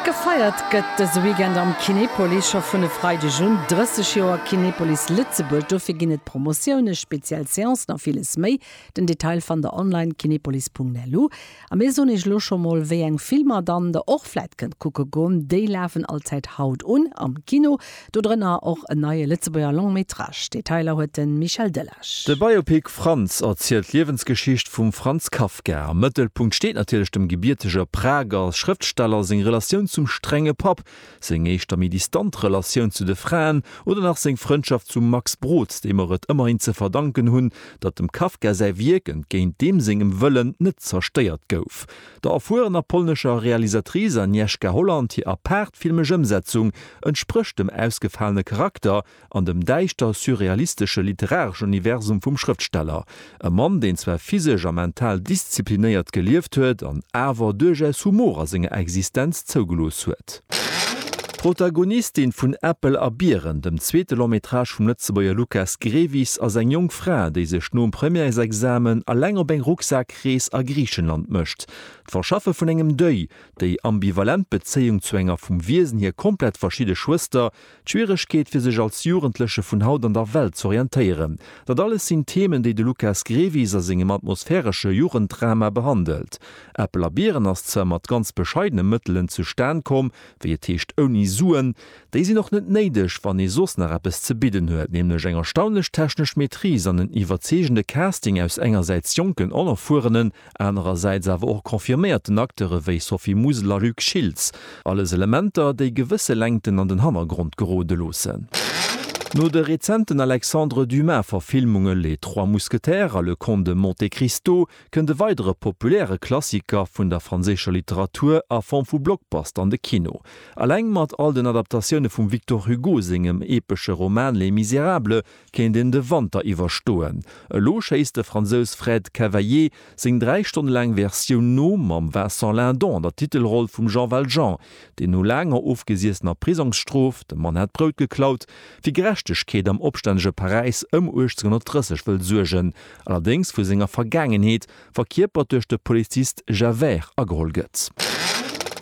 Gefeiert gëtt dëse Weekend am Kinepolis scho vun e Freideg un 30 Joer Kinepolis Lëtzebuerg. Dofir ginn et Promotioune, speziell Seancen a villes méi. Den Detail fannt der online, kinepolis.lu. A mir soen iech lo scho mol, wéi eng Filmer dann der och vläit kënnt kucke goen. Déi lafen allzäit haut un am Kino. Dodrënner och en neie Lëtzebuerger Long Métrage. Detailer huet de Michel Delage. De Biopic Franz erzielt d'Liewensgeschicht vum Franz Kafka. Am Mëttelpunkt steet natierlech dem gebiertege Prager Schrëftsteller seng Relatioun zum strenge Papp, seng éischter méi distant Relatioun zu de Fraen oder nach seng Frëndschaft zum Max Brod, dee mer et ëmmerhin ze verdanken hunn, datt dem Kafka säi Wierk, entgéint deem sengem Wëllen, net zerstéiert gouf. Der erfuerener polnescher Realisatrice Agnieszka Holland hir apaart filmesch Ëmsetzung entsprécht dem ausgefalene Charakter an dem däischter surrealistesche literareschen Universum vum Schrëftsteller. E Mann, deen zwar physesch a mental disziplinéiert gelieft huet an awer duerchaus Humor a senger Existenz zougelooss huet. D'Protagonistin vun Äppel a Biren, dem zweete Long-métrage vum Lëtzebuerger Lukas Grevis, ass eng jonk Fra, déi sech nom Premièresexamen eleng op eng Rucksak-, Krees a Griichenland mécht. D'Verschaffe vun engem Deuil, déi ambivalent Bezéiung zu enger vum Wiesen hier komplett verschidde Schwëster, d'Schwieregkeet fir sech als Jugendleche vun haut an der Welt z'orientéieren, dat alles sinn Themen, déi de Lucas Grevis a sengem atmosphäresche Jugenddrama behandelt. Äppel a Biren ass zwar mat ganz bescheidene Mëttelen zustan komm, wéi et heescht ouni Suen, Déi sinn och net néideg, wann ee soss nach eppes ze bidden huet, nämlech eng erstaunlech technesch Maîtrise an en iwwerzeegende Casting aus engersäits jonken onerfuerenen, anerersäits awer och confirméierten Acteure wéi Sophie Musil a Luc Schiltz. Alles Elementer, déi gewësse Längten an den Hannergrond gerode loossen. No de rezenten Alexandre Dumas-Verfilmunge Les Trois Mousquetaires a Le Comte de Monte Cristo kënnt e weidere populäre Klassiker vun der franséischer Literatur a Form vu Blockbuster an de Kino. Eleng mat all den Adaptatioune vum Victor Hugo sengem epesche Roman Les Misérables kéint een de Wanter iwwerstoen. Elo schéisst de Fransous Fred Cavaillé seng dräi Stonne laang Versioun no, mam Vincent Lindon an der Titelroll vum Jean Valjean. Déi no laanger ofgesiessener Prisongsstrof, dem Mann hat d'Brout geklaut, fir Gerechtegkeet am opstännege Paräis ëm 1830 wëll suergen, allerdéngs vu senger Vergaangenheet, verkierpert duerch de Polizist Javert, ageholl gëtt.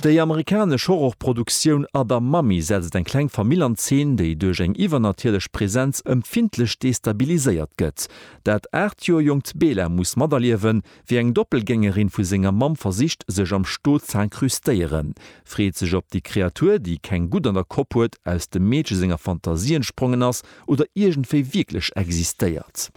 Déi amerikanesch Horrorproduktioun Other Mummy setzt eng kleng Famill an Zeen, déi duerch eng iwwernatierlech Presenz ëmfindlech destabiliséiert gëtt. Dat 8 Joer jonkt Bela muss materliewen, Wéi eng Doppelgängerin vu senger Mamm versicht, sech am Sto z'incrustéieren, freet sech op déi Kreatur, déi keng Gutt an der Kopp huet, aus dem Meedche senger Fantasie entsprongen ass oder iergendwéi wierklech existéiert.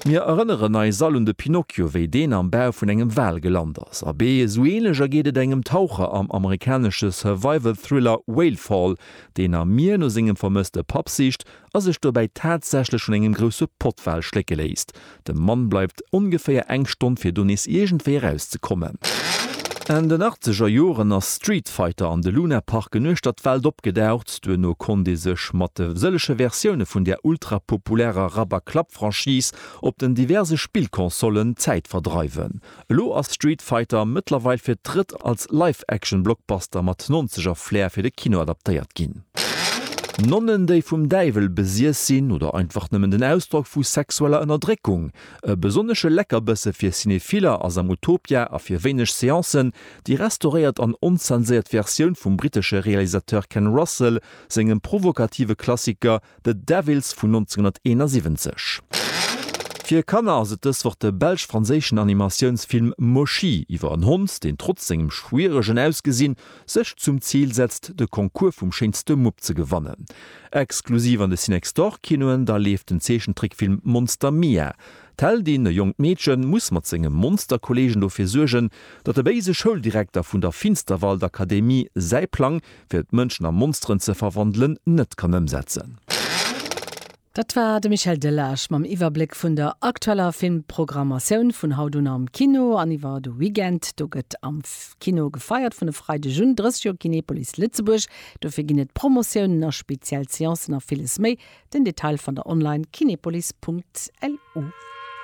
Mir erënneren eis all un de Pinocchio, wéi deen am Bau vun engem Wal gelant ass. Abee esou ähnlech ergeet et engem Taucher am amerikanesche Survival-Thriller Whale Fall, deen am Mier no sengem vermësste Papp sicht a sech dobäi tatsächlech vun engem grousse Pottwal schlécke léisst. De Mann bleift ongeféier eng Stonn, fir do nees iergendwéi eraus ze kommen. Enn den achtzeger Joren ass Street Fighter an de Lunaparken uechter d'Welt opgedaucht. Duerno konnt ee sech mat de sëllege Versioune vun där ultrapopulärer Rabberklapp-Franchise op den diverse Spillconsollen d'Zäit verdreiwen. Elo ass Street Fighter mëttlerweil fir d'drëtt als Live-Action-Blockbuster mat Nonzeger-Flair fir de Kino adaptéiert ginn. Nonnen, déi vum Däiwel besiess sinn, oder einfach nëmmen den Ausdrock vu sexueller Ënnerdréckung? E besonnesche Leckerbësse fir Cinephiller ass am Utopia a fir wéineg Seancen déi restauréiert an onzenséiert Versioun vum brittesche Realisateur Ken Russell sengem provokative Klassiker The Devils vun 1971. Fir Kanner ass et dës Woch de belsch-franséischen Animatiounsfilm Moshi iwwer en Hond, deen trotz sengem schwieregen Ausgesinn sech zum Zil setzt, de Concours vum schéinste Mupp ze gewannen. Exklusiv an de Cinextorkinoen da leeft den Zeechentrickfilm Monster Mia. D'Heldin, e jonkt Meedchen, muss mat senge Monsterkolleegen dofir suergen, datt de béise Schouldirekter vun der Finsterwaldakademie säi Plang, fir d'Mënschen a Monsteren ze verwandelen, net kann ëmsetzen. Dat war de Michel Delage mam Iwwerbléck vun der aktueller Filmprogrammatioun vun haut un am Kino an iwwer de Weekend. Do gëtt am Kino gefeiert. Vun e Freideg un 30 Joer Kinepolis Lëtzebuerg. Dofir ginn et Promotiounen a speziell Seancen a villes méi. Den Detail fannt der online, kinepolis.lu.